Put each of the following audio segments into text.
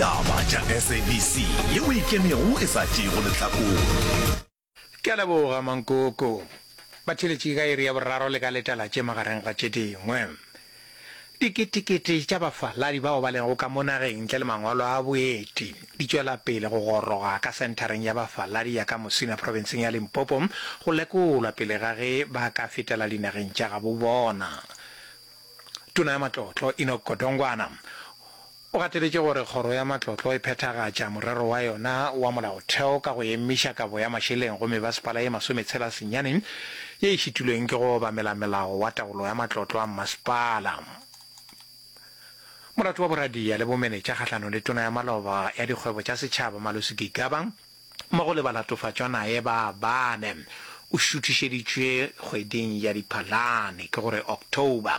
Taba tša SABC ye o ikemego e sa tšeego lehlakore. Ke a leboga Mankoko. Ba theletše ka iri ya boraro le ka letalatše magareng ga tše dingwe. Diketekete tša bafaladi bao ba lego ka mo nageng ntle le mangwalo a boeti di tšwela pele go goroga ka senthareng ya bafaladi ya ka Musina profenseng ya Limpopo go lekolwa pele ga ge ba ka fetela dinageng tša gabobona. Tona ya Matlotlo, Enoch Godongwana, O gateletše gore Kgoro ya Matlotlo e phethagatša morero wa yona wa Molaotheo ka go emiša kabo ya mašeleng go mebasepala ye masometshela senyane ye e šitilweng ke go obamela Melao wa Taolo ya Matlotlo a Mmasepala. Molato wa boradia le bomenetša kgahlanong le Tona ya Maloba ya Dikgwebo tša Setšhaba Malusi Gigaba mmogo le balatofatšwa naye ba bane o šuthišeditšwe kgweding ya Diphalane, ke go re October.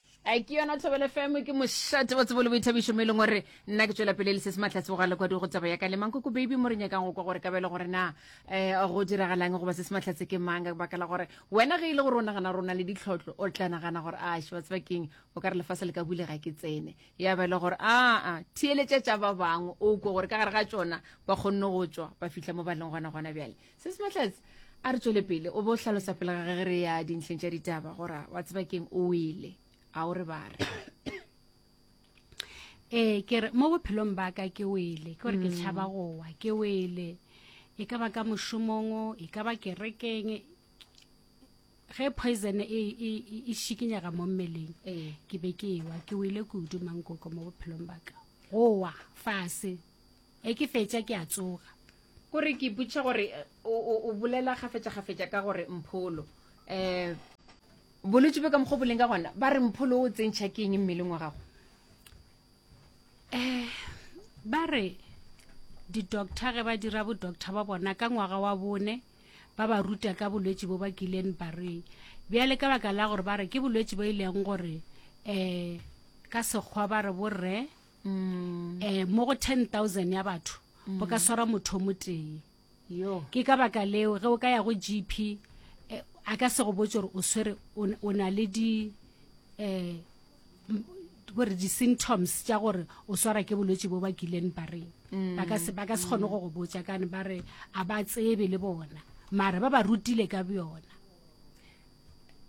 a ke yona thobele fm ke mošate wa tsebo le boithabišo mo e leng gore nna ke tswela pele le se se matlhatse go lekwadi go tsaba ya ka le mang koko baby mo re nyakang go kwa gore kabele gore na um go diragalang goba se se matlhatse ke mang ka baka la gore wena ge e le gore o nagana rona le ditlhotlho o tla nagana gore a ah, shewa tseba keng o ka re lefase le ka bule ga ke tsene ya ba e le gore aa ah, ah, theeletša tša ba bangwe o kwa gore ka gare ga tsona ba kgonne go tswa ba fitlha mo ba leng gona gona bjale se se matletse a re tswele pele o bo hlalosa pele ga ge re ya dintlheng tša ditaba gora wa tseba keng o wele a o re ba re ee ke re mo bophelong ba ka ke wele ke gore ke tšhaba mm. gowa ke wele e ka ba ka mošomong e ka ba kerekeng ge poison e, e, e, e šikinyega mo mmeleng ee. ke be ke ewa ke wele kudu mankoko mo bophelong ba ka gowa fase Ge ke fetša ke a tsoga. Ko re ke ipotšiša gore o, o, o bolela kgafetšakgafetša ka gore Mpholo. Um. Bolwetši bjo ka mokgwa o boleng ka gona, ba re Mpholo o tsentšha ke eng mmeleng wa gago? Um. Ba re di-doctor ge ba dira bo-doctor ba bona ka ngwaga wa bone, ba ba ruta ka bolwetši bo ba kileng ba re bjale ka baka la gore ba re ke bolwetši bo e leng gore um ka Sekgwa ba re borre um mo go 10000 ya batho go ka swara motho mo tee ke ka baka leo ge o ka ya go gp eh, a ka se go botse gore o swere o na le di um gore di-symptoms tša gore o swara ke bolwetse bo ba kileng ba reng mm. ba ka se kgone go go botsa kane ba re a ba tsebe le bona mara ba ba rutile ka bjona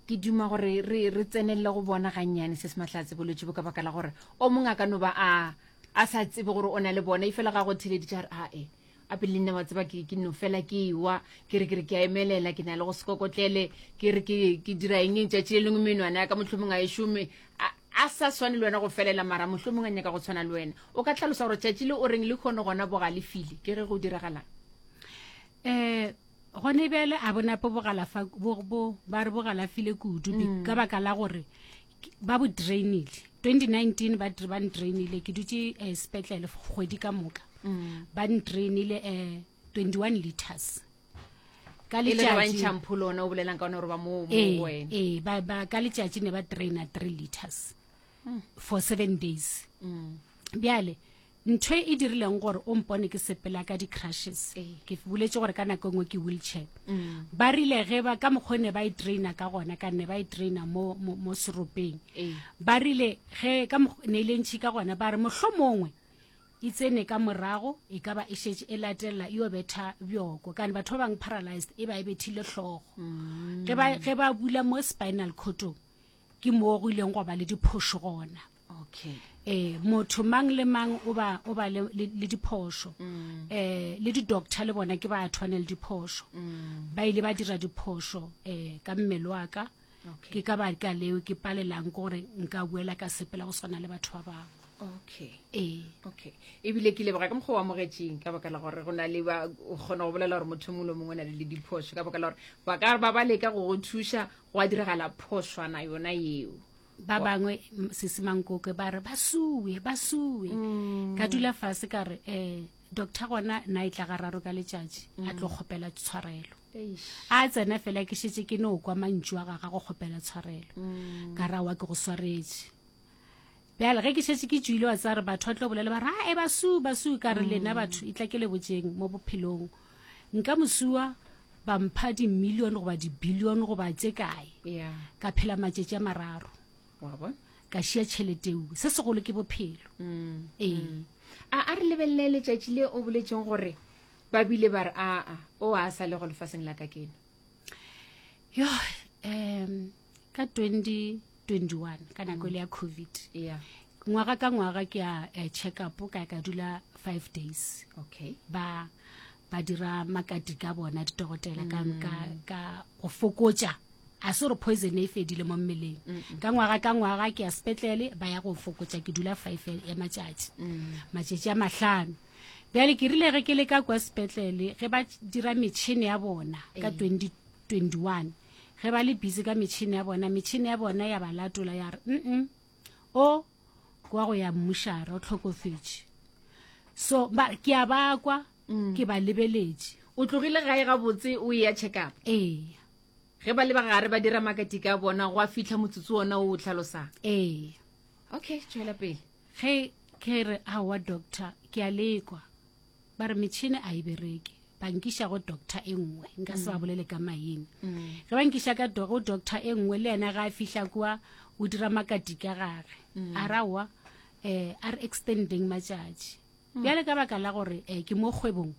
ke duma gore re re tsenelele go bona gannyane se se mahlatse bolwetse bo ka baka la gore o mongwe a ka no ba a a sa tsebe gore o na le bona e fela ga go theleditše a re ae a pele nne wa tseba ke no fela ke ewa ke re ke re ke a emelela ke na le go sekokotlele ke re ke dira eng e tšatši le lengwe menwana ya ka mohlomongwe a e šome a sa swane le wena go felela mara mohlomongwe a nyaka go tshwana le wena o ka tlhalosa gore tšatši le o reng le kgone gona bogalefile ke ge go diragalang um Gone bjale a bona po bogalafa bo bo ba re bogalafile kudu be- ka baka la gore ke- ba bo drainile 2019 ba dr- ba ndrainile ke dutse um sepetlele f- kgwedi ka moka ba ndrainile um 21 liters ka e le ge ba letšatši ntšhang pholo ona o bolelang ka ona gore ba mo mo go ee wena ee, ba- ba- ka letšatši ne ba draina three liters for seven days bjale ntho e dirileng gore o mpone ke sepela ka di-crushes ee. ke boletše gore ka nako e nngwe ke wheelchair mm. ba rile ge ba ka mokgwa ne ba e traina ka gona ka ne ba e traina mo, mo, mo seropeng ee. ba rile ge ka ne e le ntšhi ka gona ba re mohlho mongwe e tsene ka morago e ka ba e šetše e latelela e obetha bjoko kane batho ba bangwe paralyzed e ba e bethile hlogo mm. ge ba bula mo spinal cotong ke moo go ileng go ba le diphošo gona okay eh motho mang le mang o ba o ba le le diphošo mm. eh le di doctor le bona ke ba tshwane le diphošo mm. ba ile ba dira diphošo eh ka mmele wa ka ke ka ba ka leo ke palelang gore nka buela ka sepela go swana le batho ba bangwe okay ee okay ebile ke leboga ka mokgwa wa mogetseng ka baka la gore go na le ba o kgona go bolela gore motho mongwe le mongwe o na le le diphoso ka baka la gore ba ka ba ba leka go go thuša go a diragala phoswana yona eo ba bangwe sese mankoke ba re ba sue ba sue mm. ka dula fase ka re um doctor gona na e tla ga raro ka letšatši a tlo mm. kgopela tshwarelo a tsena fela ke šetse ke no kwa mantšu a gaga go kgopela tshwarelo mm. ka ra wa ke go swaretše bjale ge ke šetse ke tšwile wa tsare batho ba tlo bolela ba re a e basu basu ka re lena batho e tla ke le botseng mo bophelong mm. Nka mosuwa ba mpha dimilione goba dibilione goba tše kae yeah. ka phela matšatši a mararo ka šia tšheleteu se segolo ke bophelo mm. ee mm. a a re lebelele letšatši le o boletseng gore ba bile ba re aa o a sa le go lefaseng la ka keno yo um ka 2021 ka nako ile ya covid yeah ngwaga ka ngwaga ke a eh, check up ka ka dula five days okay ba ba dira makati ka bona ditogotela ka mm. ka ka go fokotsa a se gore poison e fedile mo mmeleng ka ngwaga ka ngwaga ke ya sepetlele ba ya go fokotsa ke dula five ya matšatši mm. matšatši a mahlano bjale ke rile ge ke le ka kwa sepetlele ge ba dira metšhini ya bona ka 2021 eh. Ge ba le busy ka metšhini ya bona, metšhini ya bona ya ba latola ya re, mm o ke wa go ya mmušara o tlhokofetše. So ba ke a bakwa mm. ke ba lebeletše. O tlogile gae gabotse o e ya check up? Ee. Ge ba le ba gare ba dira makatika a bona go a fitlha motsotso ona o o tlhalosang? Ee. Okay, tšwela pele. Ge ke re aowa doctor ke a lekwa ba re metšhini a e bereke ba nkiša go doctor e nngwe nka se ba mm. bolele ka maine mm. ge ba nkiša ka go doctor e nngwe le yena ga a fihla kua o dira makati ka gage mm. a rawa um a re extending matšatši bjale ka baka la gore um ke mo kgwebong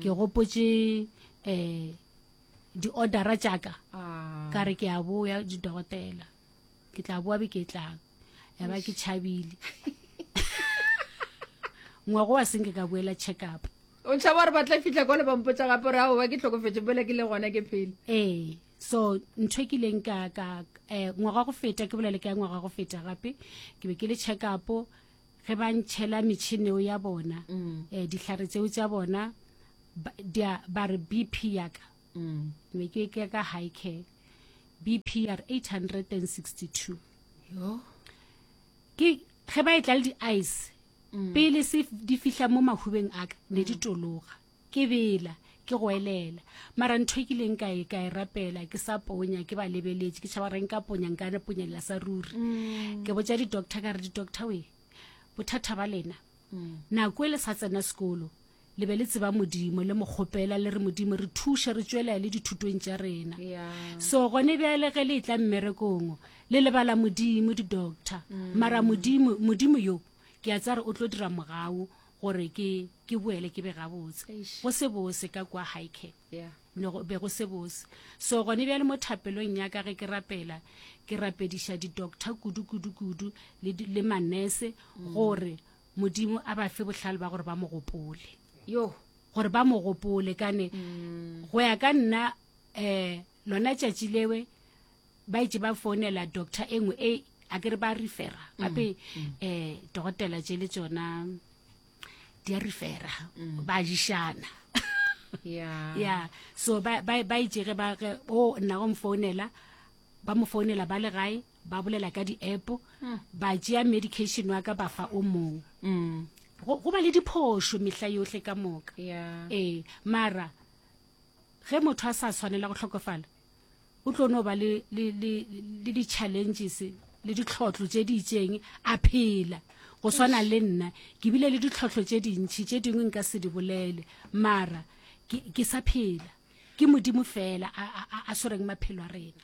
ke gopotse um di-ordera tšaka ah. ka re ke a boya didogotela ke tla boa beke e tlang ya ba ke tšhabile ngwago wa senke ka boela check up o tšhaba gore ba tla fitlha kwa le bampotsa gape gore ao ba ke tlhokofetse bola ke le gona ke phele ee so ntho e ke ileng ka ka eh, ngwaga go feta ke bolele ka ngwaga go feta gape ke be ke le check up ge ba ntšhela metšhineo ya bona um dihlare tseo tsa bona ba re bp yaka mm. ne ke ke ka high care bpr 862 yo ke ge ba e tla le di-ice mm. pele se di fihla mo mahubeng a ka ne di mm. tologa ke bela ke go elela mara ntho e kileng ka e ka e rapela ke sa ponya ke ba lebeletše ke tšhaba reng ka ponya nka ne ponyelela sa ruri mm. ke botsa di-doctor ka re di-doctor we bothata ba lena nako e le sa tsena sekolo Le be le tseba Modimo, le mo kgopela, le re, Modimo, re thuše re tšwelea le dithutong tša rena. So gone bjale ge le e tla mmerekong, le lebala Modimo, di-doctor. Mm. Mara Modimo, Modimo yo, ke a tsare o tlo dira mogau gore ke, ke boele ke be gabotse. Go se bose ka kwa Highcare. Yeah no be go se bose so gone bjale mo thapelong ya ka ge ke rapela ke rapediša di-doctor kudu kudu kudu le, le manese gore Modimo a ba fe bohlale ba gore ba mo gopole. Yo, gore ba mo gopole kane mm. go ya ka nna eh lona tšatši lewe ba itse ba founela doctor e nngwe e a ke re ba refera mm, gape mm. eh dokotela tše le tsona di a refera mm. ba jishana yeah yeah so ba ba ba itse ge ba o nna go mfounela ba mo founela ba le gae ba bolela ka di-app hmm. ba tšea medication wa ka ba fa o mong hmm. go ba le diphošo mehla yohle ka moka ee mara ge motho a sa tshwanela go tlhokofala o tlo no ba le di-challenges le ditlhotlho tse di itseng a phela go swana le nna ke bile le ditlhotlho tse dintšhi tse dingwe nka se di bolele mara ke sa phela ke modimo fela a swereng maphelo a rena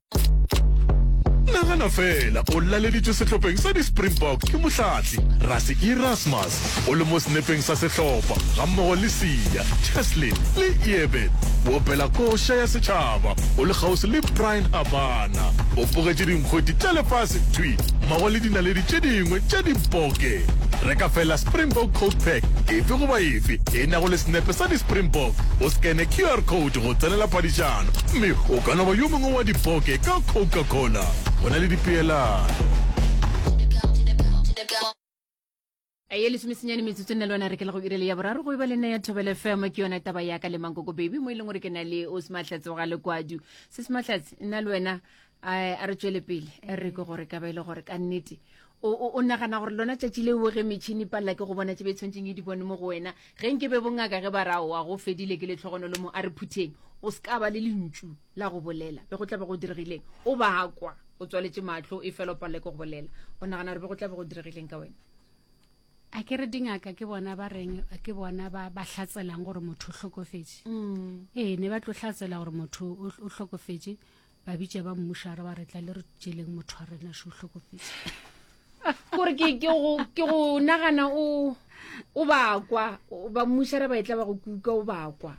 nagana fela o laleditšwe sehlopheng sa di-springbok ke mohlatli rase erasmus o le mo senepeng sa sehlopha gammogo le sia cheslin le eebet o opela koša ya setšhaba o le kgauswi le brian habana o pogetše dinkgweti tša lefase thwi mmogo le dinaledi tše dingwe tša diboke re ka fela springbok codepack efe goba efe e nago le senepe sa di-springbok o scane qr code le go tsenela paditšana, gomme o ka no ba yo mongwe wa dipoke ka Coca-Cola go na le dipeelano. A ye lesomesenyane metsotso nna le wena re ke la go irele ya boraro go e ba le nna ya thobele fm ke yona taba yaka le mankoko baby mo e leng gore ke na le o sematlhatse wa ga lekwadu se sematlhatse nna le wena a re tswele pele a re ke gore ka ba e le gore ka nnete o nagana gore lona tšatši le oge metšhini palela ke go bona tse be tshwantseng e di bone mo go wena ge nke be bongaka ge ba ra oa go fedile ke letlhogonolo mo a re phutheng o se ka ba le lentšu la go bolela be go tla be go diregileng o bakwa o tswaletse matlho e fela o palela ke go bolela o nagana gore be go tla be go diregileng ka wena a ke re dingaka ke bona ba reng ke bona ba ba hlatselang gore motho o hlokofetse mm. ee ne ba tlo hlatsela gore motho o hlokofetse ba bitša ba mmušara ba re tla le re tšeleng motho wa rena se o hlokofetse gore ke go nagana o o bakwa ba mmušara ba e tla ba go kuka o bakwa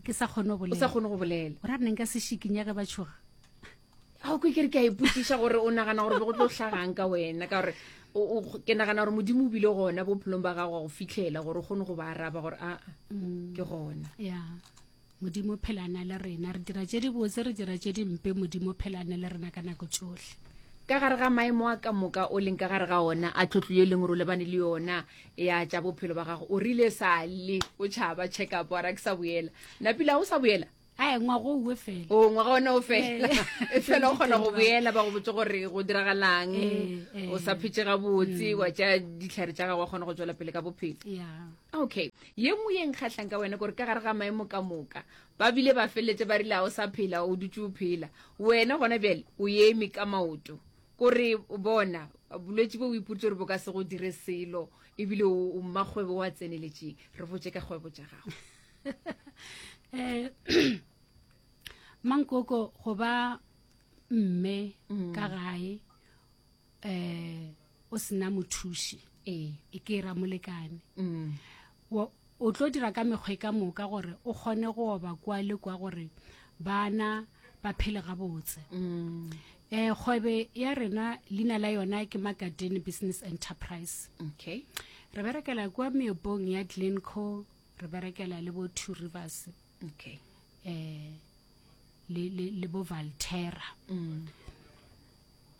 ke sa kgone go sa kgone go bolela gore a neng ka se šikinya ge ba tšhoga ga o kwe ke re ke a ipotsiša gore o nagana gore be go tlo hlagang ka wena ka gore ke nagana gore modimo o bile gona bophelong ba gago go fitlhela gore o kgone go ba araba gore aa mm. ke gona Modimo o phelana le rena. Re dira tše dibotse, re dira tše dimpe, Modimo o phelane le rena ka nako tšohle. Ka gare ga maemo a ka moka o leng ka gare ga ona a tlotlo ye leng gore o lebane le yona ya tša bophelo ba gago o rile sa le o tšhaba check up wa ra ke sa boela napila o sa boela ae ngwaga o uwe fela o ngwaga ona o fela e fela o kgona go boela ba go botse gore go diragalang o sa phetse gabotse wa tša ditlhare tša gago wa kgona go tswela pele ka bophelo okay Ye nngwe ye nkgahlang ka wena ke gore ka gare ga maemo ka moka, ba bile ba feleletše ba rile, Ga o sa phela, o dutše o phela. Wena gona bjale o eme ka maoto. Ko re, bona, bolwetši bo o ipoditše gore bo ka se go dire selo, e bile o, o mmakgwebo wa tseneletšeng. Re botše ka kgwebo tša gago. Eh, Mankoko, go ba mme ka gae, um o sena mothuši ee. e ke e ramolekane mm. o tlo dira ka mekgwa e ka moka gore o kgone go oba kwa le kwa gore bana ba phele gabotse um kgwebe ya rena leina la yona ke magadene business enterprise okay re berekela kwa meopong ya glenco re berekela le bo two rivers okay um le bo valterra mm.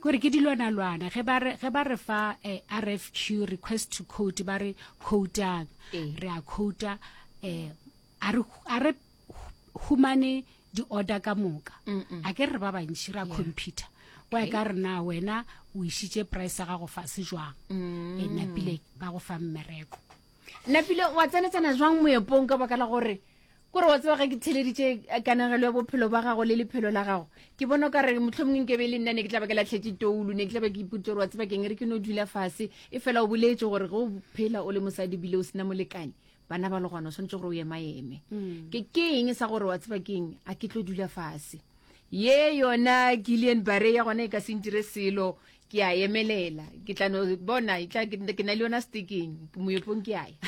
kore ke dilwanalwana ge ba re ge ba re fa eh, rfq request to quote ba re quotang eh. re a quota eh a re a re humane di order ka moka a ke re ba bantši ra computer wa ka rena wena o isitse price ga go fa se jwang mm. e napile ba go fa mmereko napile wa tsenetsana jwang moepong ka baka la gore Kore wa tseba ge ke theleditše kanegelo ya bophelo ba gago le lephelo la gago, ke bona ka re mohlomongwe nke be le nna ne ke tla ba ke latlhetše toulu, ne ke tla ba ke ipotse gore wa tseba keng re ke no dula fase, e fela o boletše gore ge o phela o le mosadi bile o sena molekane, bana ba le gona o swanetše gore o emaeme. Mm. Ke ke eng sa gore wa tseba keng a ke tlo dula fase. Ye yona Gillian Bare ya gona e ka se ntire selo, ke a emelela, ke tla no bona, e ke na le yona stekeng, moepong ke a ya.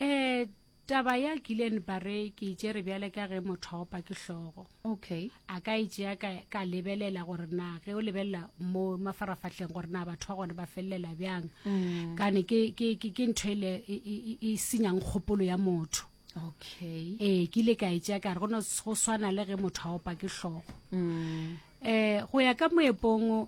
Eh, Taba ya Gillian Barre ke e tšere bjale ka ge motho a opa ke hlogo. Okay. A ka e tšea ka, ka lebelela gore na ge o lebelela mo mafarafahleng gore na batho ba gone ba felelela bjang. Mm. Kane ke, ke, ke, ke ntho ele e, e, e, e senyang kgopolo ya motho. Okay. Ee, ke ile ka e tšea ka re go no go swana le ge motho a opa ke hlogo. Mm. Eh, go ya ka moepong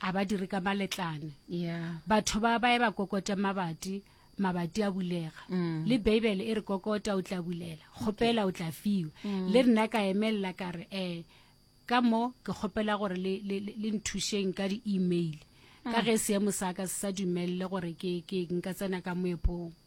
A ba dire ka maletlane. Yeah. Batho ba ba eba kokote mabati mabati a bulega mm. le beibele e re kokota o tla bulela kgopela o tla fiwa mm. le rena ka emelela ka re um ka mo ke kgopela gore le nthušeng ka di-email ka mm. ge seemo sa ka se sa dumelele gore ke nka tsena ka moepong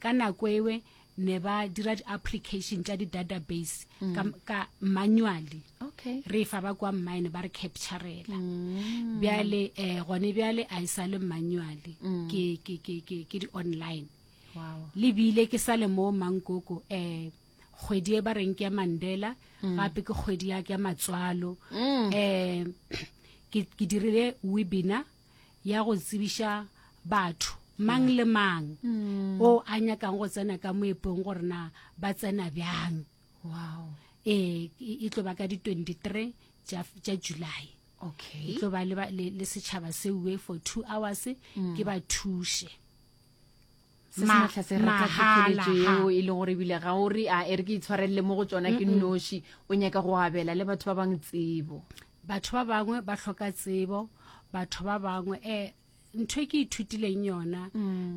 Ka nako ewe ne ba dira di application tša di database mm. ka, ka manually okay. re fa ba kwa mine ba re capturela mm. bjale eh, gone bjale a e sa le manually mm. ke, ke, ke, ke, ke di online wow. le bile ke sa le mo mankoko eh, kgwedi e ba reng ke ya mandela mm. gape ke kgwedi ya ke ya matswalo mm. eh, ke, ke dirile webinar ya go tsebiša batho mang le mang mm. o a nyakang go tsena ka moepong gore na ba tsena bjang wow. e, e tlo ba ka di-23 tša july okay. e tlo ba le, le, le setšhaba seue for two hours mm. ke ba thushe se se Ma- matlha se re ka mahala, thekheletšo ha. yeo e le gore ebile ga o re a e re ke itshwarelele mo go tsona ke nnoši o nyaka go abela le batho ba bangwe tsebo batho ba bangwe ba hloka tsebo batho ba bangwe um ntho e ke ithutileng yona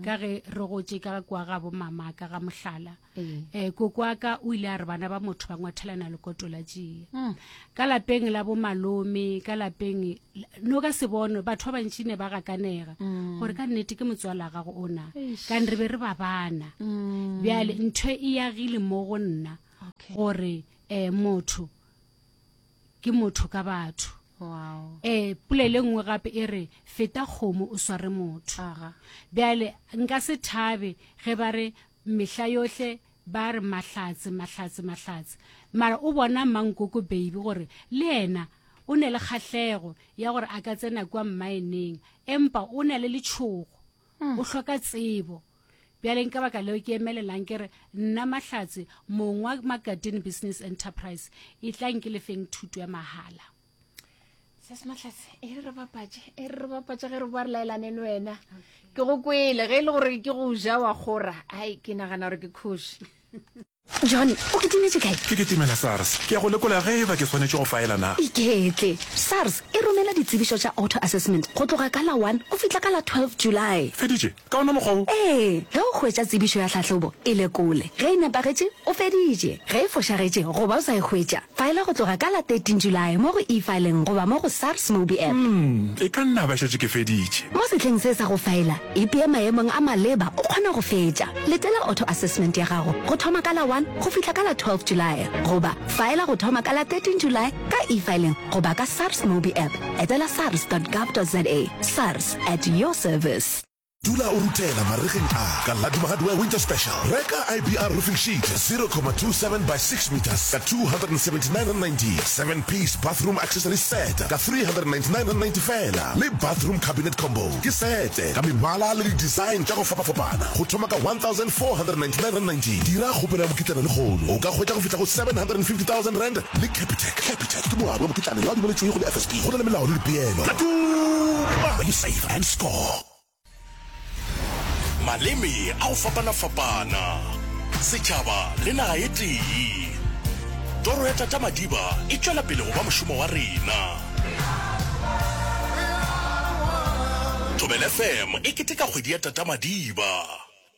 ka ge re gotše ka kwa ga bomamaka ga mohlala um koko wa ka o ile a re bana ba motho ba ngwathelana lekoto la tšea hmm. ka lapeng la bomalome ka lapeng no ka se bono batho ba bantši ne ba gakanega hmm. gore ka nnete ke motswala gago o na kane re be re ba bana hmm. bjale ntho e yagile mo go nna gore um motho ke motho ka batho wow. e pula le nngwe gape e re feta kgomo o sware motho bjale nka se thabe ge ba re mehla yohle ba re mahlatse mahlatse mahlatse mara o bona mankoko baby gore le ena o ne le kgahlego ya gore a ka tsena kwa mmaeneng empa o na le letshogo hmm. o hloka tsebo Bjaleng ka baka leo ke emelelang ke re nna Mahlatse, mong wa Magadini Business Enterprise, e tlang ke lefeng thuto ya mahala. Sese Mahlatse, e re re bapatše, e re re bapatše ge re boa re laelane le wena. Ke go kwele, ge e le gore ke go ja wa kgora, ai ke nagana gore ke kgoši. John, o kitimetše kae? Ke kitimela SARS. Ke ya go lekola ge eba ke swanetše go faela na. Iketle. SARS e romela ditsebišo tša auto-assessment go tloga ka la one go fihla ka la twelve July. Feditše? Ka ona mokgwa wo? Ee, ge o hwetša tsebišo ya tlhahlobo, e lekole. Ge e nepagetše, o feditše. Ge e fošagetše goba o sa e hwetša, faela go tloga ka la thirteen July mo go E-filing goba mo go SARS Mobi App. Umm, e ka nna ba šetše ke feditše. Mo sehleng se sa go faela, Ipee maemong a maleba o kgona go fetša. Letela auto assessment ya gago go thoma ka la 1 go fihla ka la 12 Julae goba faela go thoma ka la 13 Julae ka e-filing goba ka SARS Mobi App. Etela sars.gov.za. SARS, at your service. Dula o ruthela marigeng a ka la Duma Hardware Winter Special. Reka IBR roofing sheet 0,27 by 6 metres ka 279.90, 7 piece bathroom accessory set ka 399.90 feela le bathroom cabinet combo. Ke sete ka mebala le di-design tša go fapafapana go thoma ka R1,499. Dira kgopelo ya mokitlana lehono o ka hwetša go fihla go R750,000 le Capitec. Capitec ke moabi wa mokitlana yo a dumeletšwego le FSB. Go na le melao le dipeelo. Tla tuma! You save and score! Maleme a go fapana-fapana, setšhaba le naga e tee. Toro ya Tata Madiba e tšwela pele go ba mošomo wa rena. Thobela FM e keteka kgwedi ya Tata Madiba.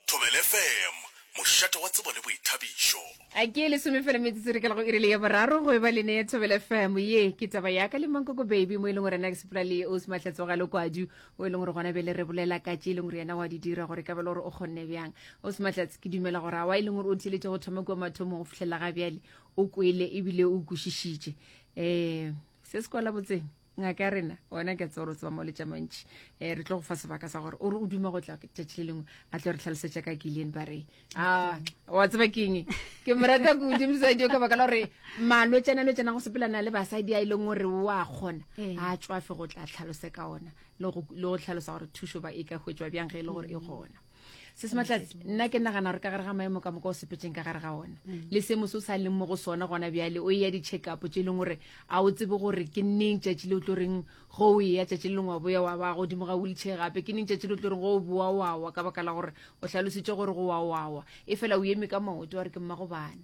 Thobela FM, mošate wa tsebo le boithabišo. A ke lesome fela metsotso re ka go irile ya boraro go eba lene ya thobela fm ye ke taba ya ka le mankoko baby mo e leng gore na ke sepela le o sematlhatso ga lokwadi o e leng gore gona bele re bolela ka tše e leng gore yena wa di dira gore ka bele gore o kgonne bjang o sematlhatse ke dumela gore a wa e leng gore o theletše go thoma kua mathomo go fitlhelela ga bjale o kwele ebile o kwešišitše ee se se kwala botseng ngaka ya rena ona ke tse gore tseba mo letša mantši um re tlo go fa sebaka sa gore o re o duma go tla tšatši le lengwe a tlo re tlhalosetša ka killian ba re a wa tseba keng ke morata ko dimosadio ka baka la gore malwetsana lwetsana go sepelana le basadi a e leng gore o a kgona a tswafe go tla tlhalose ka ona le go tlhalosa gore thušo ba e ka hwetswa bjang ge e le gore e gona se se matlatsi nna ke nagana gore ka gare ga maemo ka moka o sepetseng ka gare ga ona mm. le seemo se o sa leng mo go sona gona bjale o eya di-check up tse e leng gore a o tsebe gore ke neng tšatši le o tlo reng go o eya tšatši le leng wa boya wa ba godimo ga wheelchair gape ke neng tšatši le o tlo reng go o boa wawa ka baka la gore o hlalositse gore go wa wawa e fela o eme ka maoto wa re ke mmago bana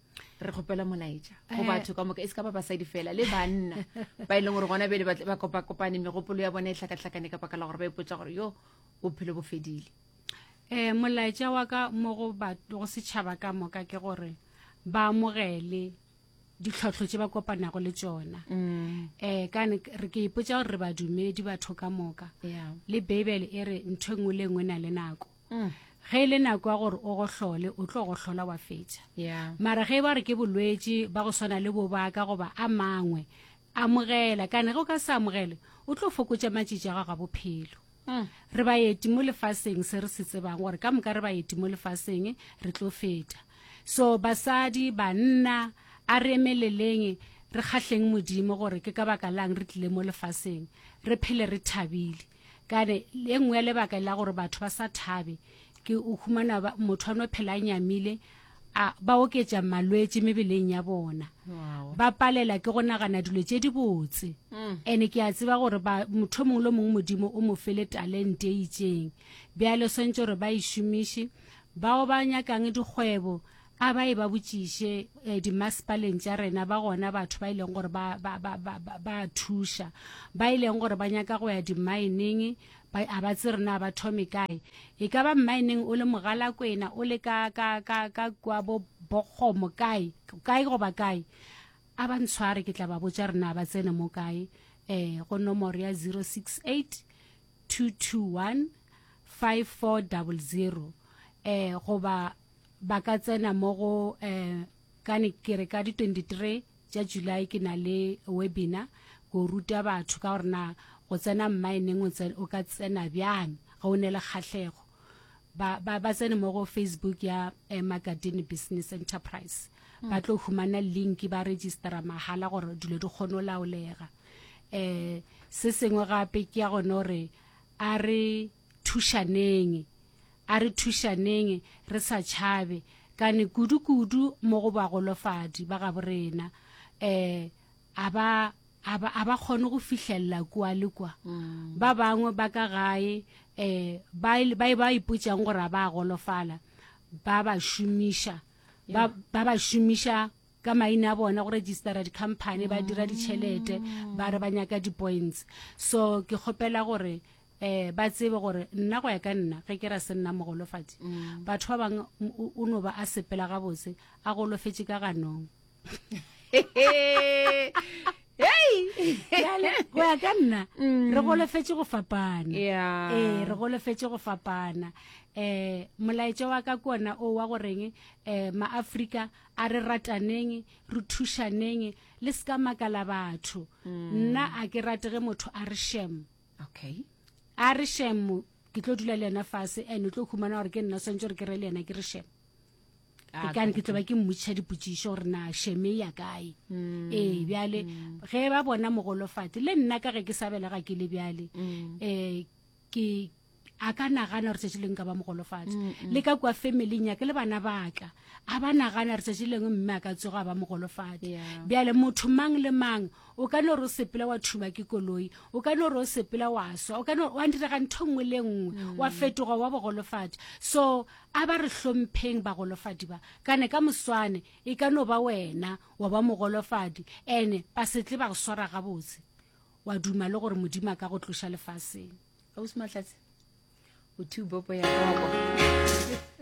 re kgopela molaetša go eh. batho ka moka e se ka ba basadi fela le banna ba e leng gore gona bele ba kopakopane megopolo ya bona e tlhakatlhakane ka baka la gore ba ipotsa gore yo bophelo bo fedile um molaetša wa ka mo go go setšhaba ka moka ke gore ba amogele ditlhotlho tse ba kopanago le tsona um ka re ke ipotsa gore re badumedi batho ka moka le beibele e re ntho e nngwe le nngwe na le nako mm. ge e le nako ya gore o gohlole o tlo gohlola wa fetša yeah. mara ge e ba re ke bolwetši ba go swana le bobaka goba a mangwe amogela kana ge o ka se amogele o tlo fokotša matšitši a gago a bophelo mm. re baeti mo lefaseng se re se tsebang gore ka moka re baeti mo lefaseng re tlo feta so basadi banna a re emeleleng re kgahleng modimo gore ke ka baka lang re tlile mo lefaseng re phele re thabile kane e nngwe ya lebaka la gore batho ba sa thabe ke o humana motho a no phela a nyamile a ba oketša malwetse mebeleng ya bona ba palela ke go nagana dilo tše di botse mm. and-e ke a tseba gore motho mongwe le mongwe modimo o mo fele talente e itseng bjale swantse gore ba e šomiše bao ba nyakang dikgwebo a ba e ba botšiše eh, dimasepaleng tša rena ba gona batho ba e leng gore ba, ba, ba, ba, ba, ba thuša ba e leng gore ba nyaka go ya dimaeneng a ba tse rena ba thome kae e ka ba mmaeneng o le mogalakwena o le ka, ka, ka, ka kwa bo bokgomo kae kae goba kae a ba ntshware ke tla ba botsa rena ba tsene mo kae um go nomoro ya 068 221 5400 um goba ba ka tsena mo go um kane ke re ka di 23 tša july ke na le webinar ko ruta batho ka gore na go tsena mmaeneng o ka tsena bjang ge o ne le kgahlego ba ba ba tsene mo go facebook ya eh, magadini business enterprise hmm. ba tlo humana link ba registera mahala gore dilo di kgone o laolega eh se sengwe gape ke ya gone gore a re Thušaneng. A re thušaneng re sa tšhabe, kane kudu-kudu mo go bagolofadi ba gabo rena. Um a ba, a ba, a ba kgone go fihlelela kua le kua. Ba bangwe ba ka gae um ba e, ba e, ba ipotšang gore a ba a golofala, ba ba šomiša, ba, ba ba šomiša ka maina a bona go registera di-company, ba dira ditšhelete, ba re ba nyaka di-points. So ke kgopela gore eh ba tsebe gore nna go ya ka nna ge ke ra se nna mogolofadi mm. batho ba bang o no ba a sepela ga botse a golofetse ka ganong hey go ya ka nna mm. re golofetse go fapana yeah. eh re golofetse go fapana eh molaetša wa ka kona o wa goreng eh maafrika a re rataneng re thušaneng le se ka makala batho mm. nna a ke rate ge motho a re shame okay a re shemo ke tlo dula le yena fase and o tlo khumana gore ke nna swantse gore ke re le yena ke re shemo ah, ke kane ke tlo ba ke mmotšiša dipotsišo gore na sheme ya kae mm. ee bjale mm. ge ba bona mogolofati le nna ka ge ke sa belega ke le bjale um ke a ka nagana gore tšatši leng ka ba mogolofatša mm, mm. le ka kua familing yake le bana baka a ba nagana gore tšatši leng mme a ka tsoga a ba mogolofatša bjale motho mang le mang o ka no re o sepela wa thuba ke koloi o ka no re o sepela wa swa o ka no wa ndirega ntho nngwe le nngwe mm. wa fetoga wa bogolofatša so a ba re hlompheng bagolofadi ba kane ka moswane e ka no ba wena wa ba mogolofadi ene ba setle ba go swara gabotse wa duma le gore modimo a ka go tloša lefaseng ausi mahlatse o two bopo ya gago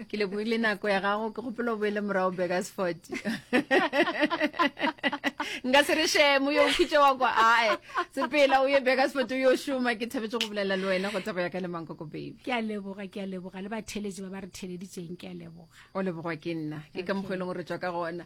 ke leboile nako ya gago ke gopelo boele morago bakersford nka se re shemo yo khutse wa kwa ae sepela o ye bakersford o yo šoma ke thabetse go bolela le wena go tsa go ya ka le mankoko baby ke a leboga ke a leboga le batheletši ba ba re theleditseng ke a leboga o lebogwa ke nna ke ka mokgwa e leng gore tswa ka gona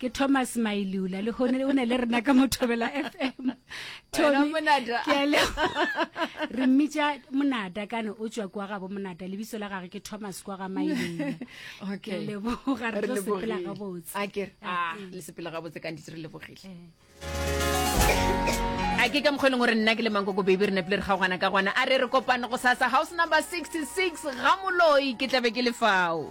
ke thomas mailula le gone o ne le rena ka mothobela fm re mmitša monada kana o tswa kwa gabo monada lebiso la gage ke thomas kwa ga mailula okay. leboga re tlo sepela gabotse a ke ah, le sepela gabotse ka ntitse re lebogile eh a ke ka mokgweleng gore nna ke le mankoko baby re nepile re kgaogana ka gona a re re kopane go sasa house number 66 ga moloi ke tlabe ke lefao